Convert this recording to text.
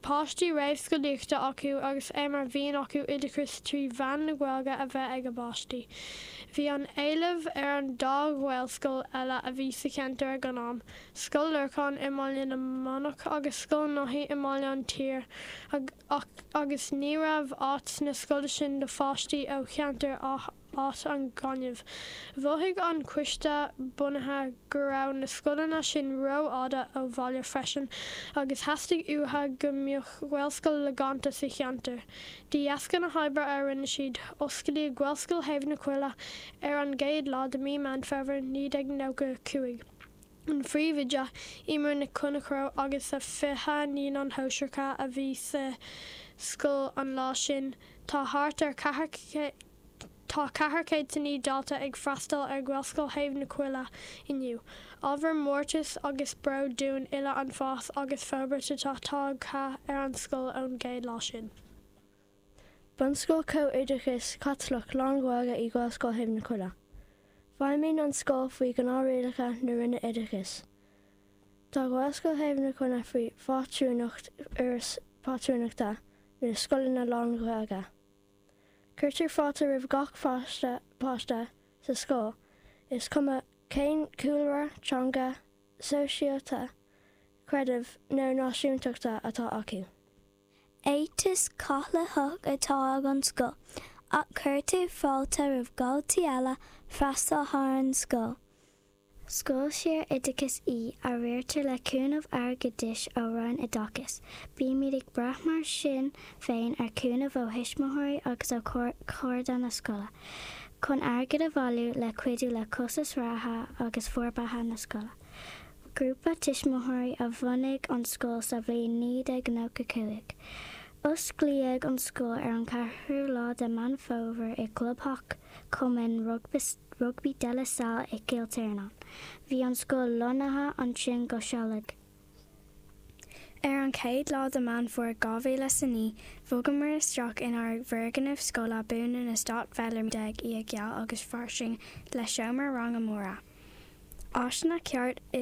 páistí réamhscolaíochta acu agus é mar mhian acu oideachas trí mheán na Gaeilge a bheith ag a bpáistí. Bhí an-éileamh ar an dá ghaelscoil eile a bhí sa cheantar ag an am, Scoil Lorcáin i mBaile na Manach agus Scoil Naithí i mBaile an tSaoir, ach agus ní raibh áit sna scoile sin do pháistí ó cheantar Áth Áth an Ghainimh. Mhothaigh an Coiste Bunaithe go raibh na scoileanna sin ró-fhada ó bhaile freisin agus theastaigh uatha go mbeadh Gaelscoil logánta sa cheantar. De dheasca na hoibre a rinne siad, osclaíodh Gaelscoil Thaobh na Coille ar an gcéad lá de Mí Meán Fómhair 1995. an phríomhoide Eimear Nic Chonchradha agus a 20 naíonán shóisearacha a bhí sa scoil an lá sin. Tá thart ar ceathair Tá ceathair chéad is a naoi dalta ag freastal ar Ghaelscoil Thaobh na Coille inniu. Ábhar mórtais agus bróid dúinn uile an fás agus forbairt atá tagtha ar an scoil ón gcéad lá sin. Bunscoil Chomh-Oideachais Chaitliceach Lán-Ghaeilge í Gaelscoil Thaobh na Coille. Feidhmíonn an scoil faoi ghnáthrialacha na Roinne Oideachais. Tá Gaelscoil Thaobh na Coille faoi phátrúnacht Fhoras Pátrúnachta na Scoileanna Lán-Ghaeilge. Cuirtear fáilte roimh gach páiste sa scoil, is cuma cén cúlra, teanga, sóisialta, creidimh nó náisiúntachta atá acu. Éiteas Caitliceach atá ag an scoil, ach cuirtear fáilte roimh dhaltaí eile freastal ar an scoil. Scoil saoroideachais í, a riartar le cúnamh airgeadais ó Roinn Oideachais. Bímid ag brath mar sin féin ar chúnamh ó thuismitheoirí agus ó chairde na scoile, chun airgead a bhailiú le cuidiú le costas reatha agus forbartha na scoile. Grúpa tuismitheoirí a bhunaigh an scoil sa bhliain 1995. Osclaíodh an scoil ar an ceathrú lá de Meán Fómhair i gclubtheach Chumann Rugbaí De La Salle i gCill Tiarnáin. Bhí an scoil lonnaithe ansin go sealadach. Ar an chéad lá de Meán Fómhair 2009, bhogamar isteach inár bhfoirgneamh scoile buan in Eastát Bheallairmín, í geal agus fairsing le seomraí ranga móra. Áiseanna ceart idir.